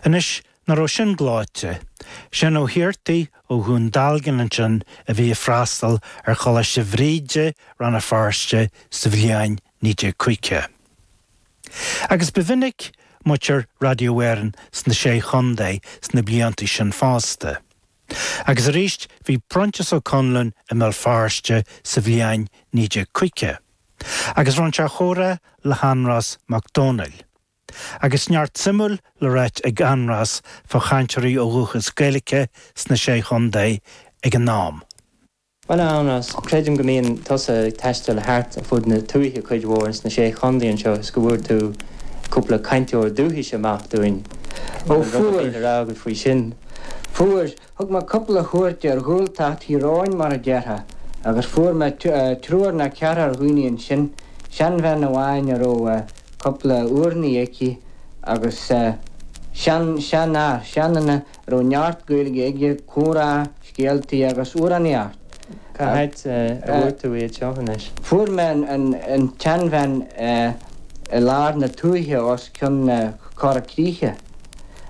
Anois, ná raibh sin gleoite. Seán Ó hAortaigh ó Dhún Dealgan ansin a bhí ag freastal ar Choláiste Bhríde, Rann na Feirste sa bhliain 1950. Agus ba mhinic muintir Radio Éireann sna Sé Chontae sna blianta sin fosta. Agus arís bhí Proinsias Ó Conluain i mBéal Feirste sa bhliain 1950. agus rinn sé comhrá le hAindreas Mac Domhnaill, agus neart suimiúil le ráit ag Aindreas fá chainteoirí ó dhúchas Gaeilice sna Sé Chontae ag an am. Bhuel, a Aindreas, creidim go mbíonn tusa ag taisteal thart ar fud na tuaithe cuid mhór insna Sé Chontae anseo is go bhfuair tú cúpla cainteoir dúchais amach dúinn. An bhfuil rud ar bith le rá agat faoi sin? Fuair! Thug mé cupla cuairt ar Ghaeltacht Thír Eoghain mar a déarfá agus fuair mé triúr ná ceathrar daoine ansin, seanbhean amháin a raibh cupla urnaí aici agus sean, seanfhear, seanduine a raibh neart Gaeilge aige, comhrá, scéaltaí agus amhránaíocht. Cá háit a bhfuair tú iad seo anois? Fuair mé an tseanbhean i lár na tuaithe os cionn Chora Críche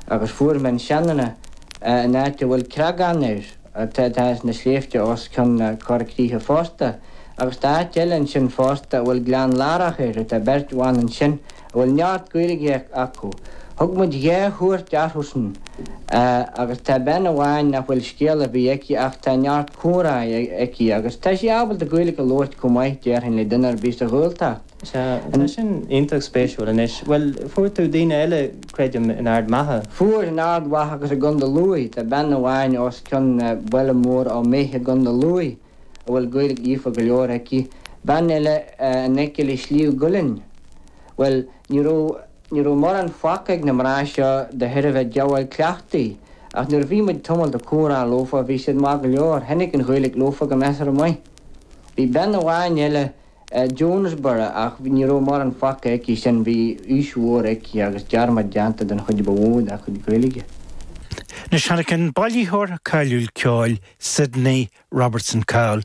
agus fuair mé an seanduine, in áit a bhfuil Creagán air, atá, tá sé sna sléibhte os cionn na Corra Críche fosta, agus tá áit eile ansin fosta a bhfuil Gleann Láirc air, tá beirt bhan ansin a bhfuil neart Gaeilge acu. Thug muid dhá chuairt orthusan agus tá bean amháin nach bhfuil scéal ar bith aici ach tá neart comhrá aici agus tá sí ábalta Gaeilge a labhairt chomh maith, déarfainn, le duine ar bith sa Ghaeltacht. Sea, tá sin iontach spéisiúil. Anois, bhuel, fuair tú daoine eile, creidim, in Ard Mhacha. Fuair, in Ard Mhacha agus i gContae Lú. Tá bean amháin os cionn baile mór Ó Méith i gContae Lú a bhfuil Gaeilge líofa go leor aici, bean eile in aice le Sliabh gCuillinn. Bhuel, ní raibh, ní raibh mórán fágtha ag na mná seo de thairbhe díobháil cleachtaidh, ach nuair a bhí muid tamall ag comhrá leofa, bhí siad maith go leor, tháinig an Ghaeilge leofa go measartha maith. Bhí bean amháin eile, Jonesborough ach ní raibh mórán fágtha aici sin, bhí aois mhór aici, agus dearmad déanta den chuid ba mhó dá chuid Gaeilge. Anois tháinig an bailitheoir cáiliúil ceoil Sydney Robertson Cowell